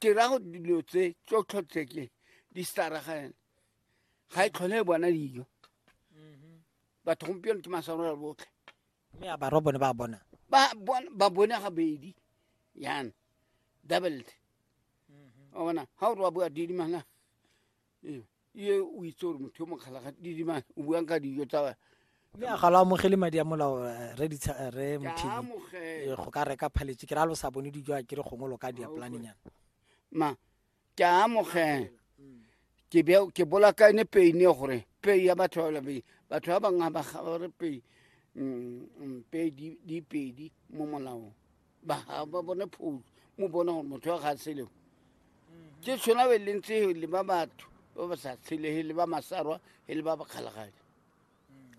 ke ra go dilo tse tsotlho tse ke di staragane ga e tlhole e bona dijo mm-hmm. batho gompieno ke masarora botlhe mme a barwa bone ba bona ba bone ga bedi yana doubled mm-hmm. wa bona ga o re wa bua didimanga ee ye o itse gore motho yo mokgalaga didima o buang ka dijo tsa mme a ga lo amogele madi a molao eh, re ditsha eh, re mthini eh, go ka reka phaletše ke ra lo sa bone dijo a ke re gongwe lo ka dia planning yana ma ke a amogela ke be ke bolakane peine gore pei ya batho ba labe batho ba bangwe ba ga re pei mm, mm, pei di pedi mo molaong ba ba bone phoulo mo bona gore motho wa ga seleo ke tshwana be leng tse le ba batho ba ba sa tshelege le ba masarwa e le ba ba kgalagadi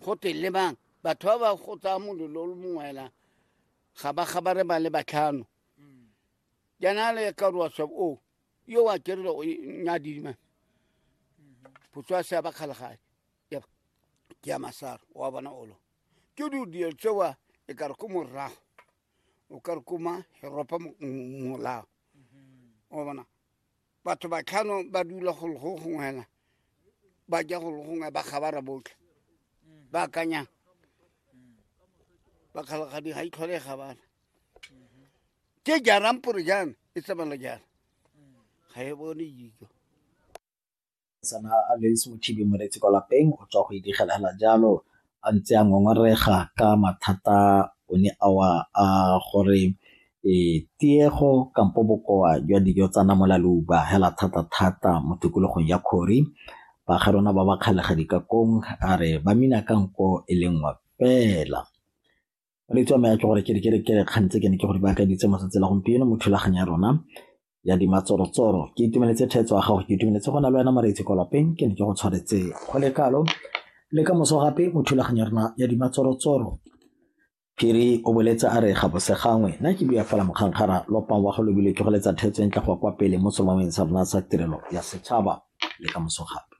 go te le bang batho ba ba go tsaya molelo o le mongwela ga ba gabare ba le batlhano jaana le ka roa swab o yo wa kerele o nyadima putswa se ba kgalagadi ke ya masaro wa bona olo ke di dilo tsewa e kare ko morago o ka re koma heropa molao o bona batho ba tlhano ba dula go lego gongwe hela ba ja go lego gongwe ba kgabara botlhe ba akanyang ba kgalagadi ga itlhole e kgabara ke jarang pore jana e tsamala jana ga e bone dijo Mosetsana a lwetse mothibi moretsi kwa lapeng o tswa go idigela hela jalo a ntse a ngongorega ka mathata o ne a wa a gore e tiego kampo bokoa jwa dijo tsa namola leuba hela thata-thata mo tikologong ya Khori. Baagi rona ba ba kgalega dikakong a re ba mina ka nko e le nngwe fela. le tswa me ya ke gore ke ke ke kgang tse ke ne ke gore ba ka ditse mo tsela gompieno mo thulaganyo ya rona ya di matsorotsoro ke itumeletse thetso ya gago ke itumeletse go na le wena mareitse kwa lapeng ke ne ke go tshwaretse go le kalo le ka moso gape mo thulaganyo ya rona ya di matsorotsoro phiri o boletse a re ga bose gangwe na ke bua fela mokgangkgara lopang wa go lobile ke go letsa thetso e ntle go kwa pele mo solomeng sa rona sa tirelo ya setšhaba le ka moso gape